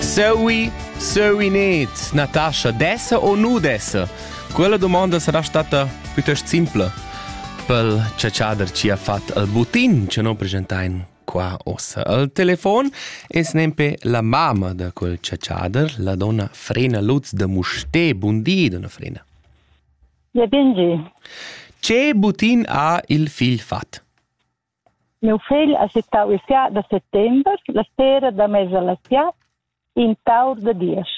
Zoe, Zoenet, Natascha, dessa ou nu dessa? Quella domanda sarà stata piuttost simpla pel ciaciader ci ha fatto al butin che non presentain qua ossa al telefon e snempe la mamma da quel ciaciader, la donna Frena Lutz de Muste. Bundi, donna Frena. Ja, bengi. Ce butin ha il figl fat? Miu fegl ha sittau il ca da settember la sera da mesa la sia in taur da diesch.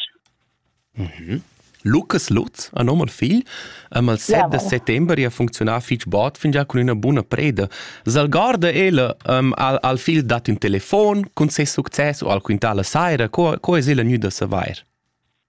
Mhm. Lucas Lutz ha nom al figl am al 7 de settember e ha funzionà fich bod fingià cun üna buna preda. S'algorda ella um, al, al figl dat ün telefon cun ses success o al quintà la saira, co, co es ella gnüda savair?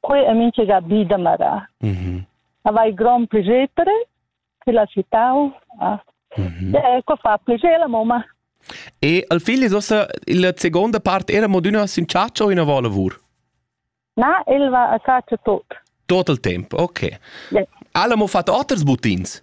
Quei ha mintga bi da marar. Mm -hmm. Avai grond piacer che la città ha. Mm -hmm. Ecco fa piacer la mamma. E al figl ossa la seconda part era mo d'una sincaccia o ina volavur? Na, el va a caccia tot. Tot il tempo, ok. Yeah. Alla mo fatto oters buttins?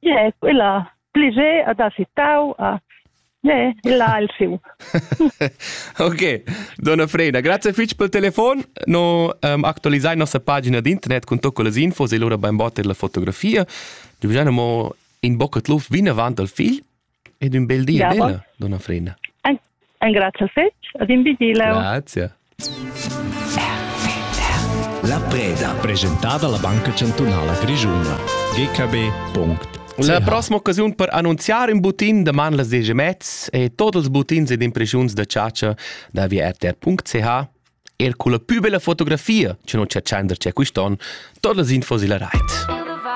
Ie, quella pliger ad ha sittau a Ie, il ha il siu. Ok, donna Freida, grazie fitg pel telefon. No um, actualisai nossa pagina d'internet con tot quellas infos e lura bain botter la fotografia. Giugiano mo in bocca tluf vinavant al figl Ed ün bel di ad ella, donna Frida. Engrazia fetg, ad in vigileu. Grazie. La preda. Presentata alla Banca Chantunala Grischuna. GKB.ch La prossima occasione per annunziare un butin deman las 10 mezz e tots els butins ed impressiuns da ciacia da via rtr.ch er con la più bella fotografia che non c'è accender c'è quest'on, todas las infos illa rait.